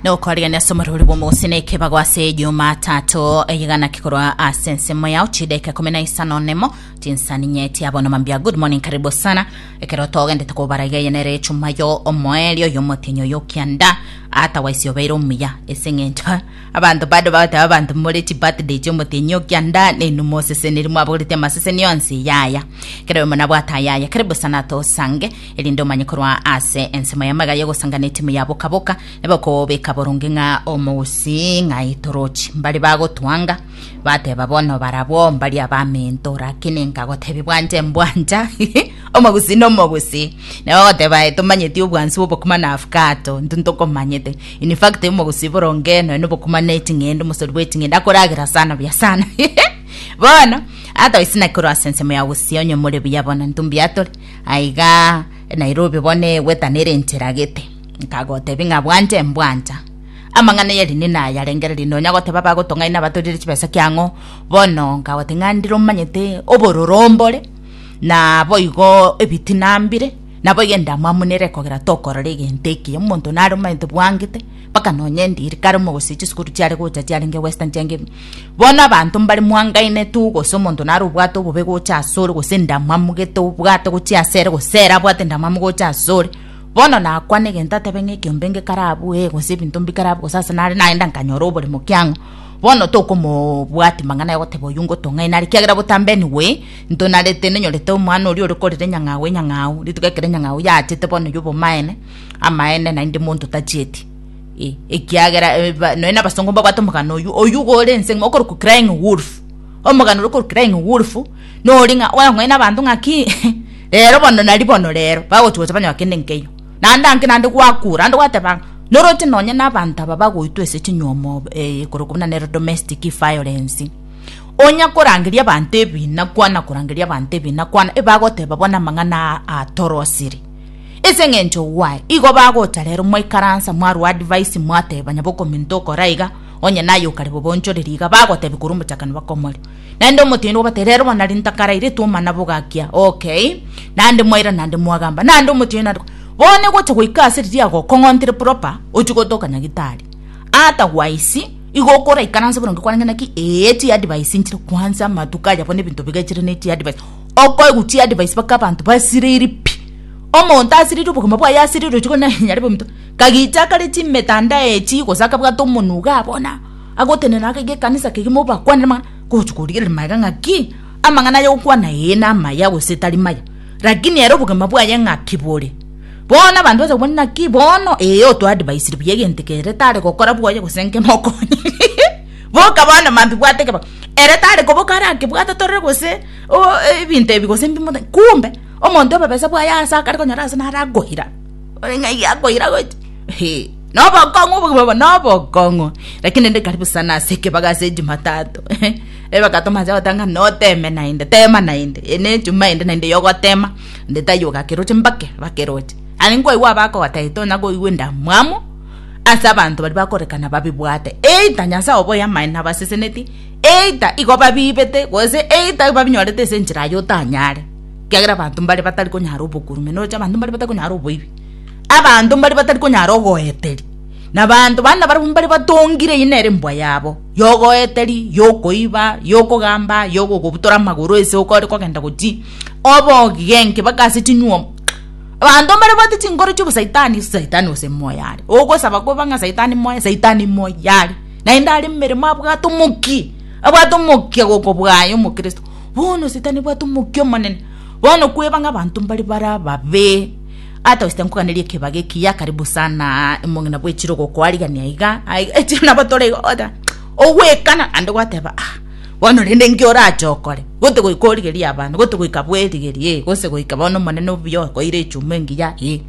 nokorigania ase omorori bw'omogose na ekebago ase jumatatu eyegana kikorwa ase ensemo yao chideka kumi na isano nemo tinsani nyeti abono mambia good morning karibu sana ekero togendete kobara iga eye nere echuma yo omoeri oyo omotenyi oyo okianda ata waisi obeire omuya ase eng'encho abanto bado bagoteba abanto more chi birthday chia omotenyi okianda nainwe moseseneri mwabagorete amaseseni yonsi yaya ekero oyo monabwate ayaya karibu sana tosange erinde omanye korwa ase ensemo y'amagare y'ogosangana etimu ya boka-boka, nabo okobeka boronge ng'a omousi ng'a aitorochi. Mbare bagotwanga, bateba bono barabwo mbari abamento, rakini nkagotebi bwanje mbwanja omogusi na omogusi. Nabo ogoteba aye tomanyeti obwansi bw'obokima na afkato, ntu ntokomanyete. In fact, omogusi boronge nonya nobokima na eting'ende, omosori bw'eting'ende akoragera sana buya sana. Bono, atoisina korwa ase ensemo ya gusii onye more buya bono, ntu mbiatore. Aiga Nairobi bono egweta nere enchera gete. Nkagotebi ng'a bwanja embwanja. Amang'ana yari nina ayarengererie nonya goteba bagotong'aina abatorire chibesa kiang'o. Bono nkagoti ng'a ndire omanyete obororo mbore na boigo ebitina mbire. Naboigo endamwamu nere ekogera tokorora egento ekiya. Omonto nare omanyete bwangete. mpaka nonya endiri kare omogose chisukuru chiare gocha chiarenge Western chiange bono abanto mbare mwangaine tu gose omonto nare obwate obobe gocha asore gose endamwamu gete obwate gochia asere gose ere abwate endamwamu gocha asore bono nakwane egento atebe ng'a ekiombe nge kare abwo ee gose ebinto mbi kare abwo gose ase nare nagenda nkanyora oboremo kiang'o bono tokomobwati mang'ana ayogoteba oywo ngotong'aine are kiagera botambe anyway ntonarete nenyorete omwana oria ore korera enyang'au enyang'au rituko ekero enyang'au yachete bono ya obomaene. Amaene, naende monto tachieti. Eh, ekiagera eh, ba- nonya nabasongo mbabwate omogano oyu oyu gore ense ng'ima okorokwa crying wolf omogano ore okorokwa crying wolf nori ng'a oyong'oe nabanto ng'a ki rero bono nari bono rero bagochigocha banywa kende nkeyo naende anke naende gwakura naende gwateba ng'a noroche nonya nabanto aba bagoitwa ase chinywomo eh, korokwa buna nero domestic violence onya korangeria abanto ebina kwana korangeria abanto ebina kwana ebagoteba bono amang'ana aa- atorosire Ase engencho gwaye, igo bagocha rero mwaikaransa mwarwa advice mwateba nyabokominto okore aiga, onye naye okare bobonchoreri iga, bagotebia korwa omochakano bakomoria. Naende omotienyi obatebia rero bono nari ntakaraireti omana bogakia, okay, naende mwaira naende mwagamba, naende omotienyi naende bono egocha goika ase riria agokong'ontire proper, ochie gotoka nyagitari. Otherwise, igo okoraikaranse boronge kwarenge naki, ee chi advice nchire kwansa amatuko aya bono ebinto bigechire ne chi advice. Okoegwa chiadvice mpaka abanto basiriri pi. Omonto asiriri obogima bwaye asiriri ochi gokina onye arebe ominto. Kagicha akare chimetandao echi gose akabwata omonwe iga abona agotenena akaiga ekanisa kegima obakwanere amang'ana gochi korigereria magega ng'aki amang'ana aya gokwana ee namaya gose tari maya. Lakini ere obogima bwaye ng'aki bore. Bono abanto bacha kobwata naki bono ee otoadvisire buya egento eke ere tare gokora bwoye gose nge mokonye boka bono mambia bwate kebao ere tare koboka arakebwate torore gose. oh, ebinto ebi gose mbimote kumbe omonto obobesa bwaye ase akare konyora ase nare akoira ore ng'a iga akoira gocha he nobokong'u obogima bono nobokong'u lakini rende karibu sana ase ekebago ase ejumatato ebaka tomache gotanga noteme naende tema naende ene ejuma ende naende yogotema nde taiyo ogakeroche mbake bakeroche aye nkwaigwa abakogotebi tonya koigwa endamwamu ase abanto baria bakorekana babibwate either nyasae oboyamani nabaseseneti eita igo babiibete gose eita igo babinyorete ase enchera aye otanyare, ekiagera abanto mbare batari konyara obokurume, noroche abanto mbare batari konyara oboibi, abanto mbare batari konyara ogoeteri, na abanto baria nabarabwo mbare batongire eye nere embwa yabo, ya ogoeteri, ya okoiba, ya okogamba, ya ogogobutora amagoro ase oko ore kogenda gochia, oboogige enki mpaka ase chinywomo. Abanto mbare babwate chinkoro chia obosaitani, saitani gose moyo are, ogosaba koba ng'a saitani moyo, saitani moyo are. Naende are momeremo abwate omokia, abwate omokia gokobwaya omokristo. Bono Sitani obwate omokia omonene, bono kweba ng'a abanto mbare bare ababe. Ata gose tinkoganeria ekebago ekiya karibu sanaa omong'ina bwe echiro ogokoarigania igaa aiga echiro nabo tore iga ogoteba ogoekana naende gwateba ah bono rende nki orache okore goti goika origerie abanto goti goika bwerigerie gose goika bono omonene obuya okoeire echuma engiya eh.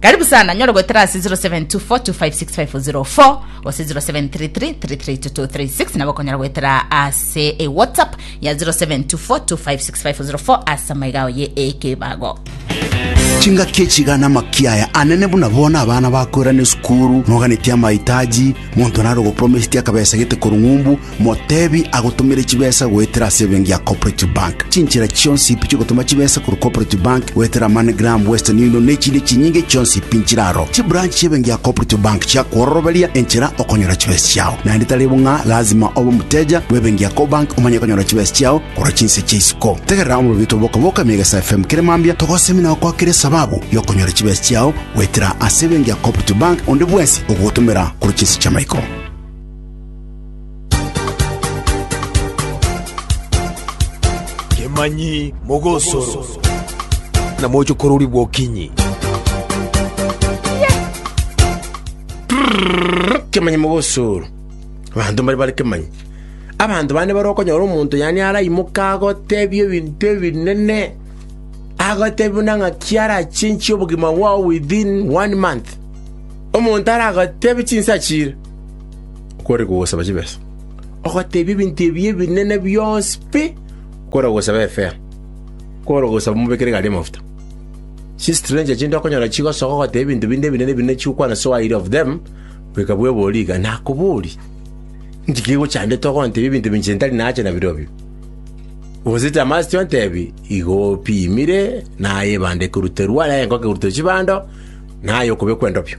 Karibu sana nyore goetera ase 0724256504 gose 0733332236 nabo okonyara goetera ase e whatsapp ya 0724256504 ase amaiga ao ye ekebago chingaki echigana makiaya anene buna bona abana bakwera ne sukuru moganetie amahitaji monto naro gopromisiti akabesa gete korung'umbu Motebi agotomere chibesa goetera ase ebenki ya Cooperative Bank. Chinchera chionsi pi chiogotoma chibesa korwa Cooperative Bank goetera MoneyGram, Western Union na echinde chinyinge chionsi pi nchire aro. Chibranch chi'ebenki ya Cooperative Bank chiakwororoberia enchera okonyora chibesa chiao. Naende tari bo ng'a lazima obe omoteja bw'ebenki ya Cobank omanye konyora chibesa chiao korwa chinse chia isiko. Tegerera omorobito bw'okoboka emia egesa FM kere mambia togosemi na gokwakera esababu y'okonyora chibesa chiao goetera ase ebenki ya Cooperative Bank onde bwensi ogogotomera korwa chinse chi'amaiko. Kemanyi mogosoro, na moche kororigwa okinyi. Kemanyi mogosoro, abanto mbare bare kemanyi. Abanto bande bare okonyora omonto yaani araimoke agotebie ebinto ebinene, agotebie buna ng'aki arachenchie obogima bwao within one month. Omonto aragotebie chinsa chire. kore kogosaba chibesa, ogoteebia ebinto ebi ebinene bionsi pi kore kogosaba efea, kore kogosaba omobeke rigari y'amafuta. Chistrenger chinde okonyora chigosoka ogoteebia ebinto binde ebinene binde chigokwana so aire of them, goika bwebori iga, nakoborie, inki kegochandete ogonteebia ebinto binche ntari nacha nabirobio? Gose tamasti ontebi, igo opimire, naye ebanda ekoruterwa, naye enko ekeruterwa chibando, naye okobekwa endobio.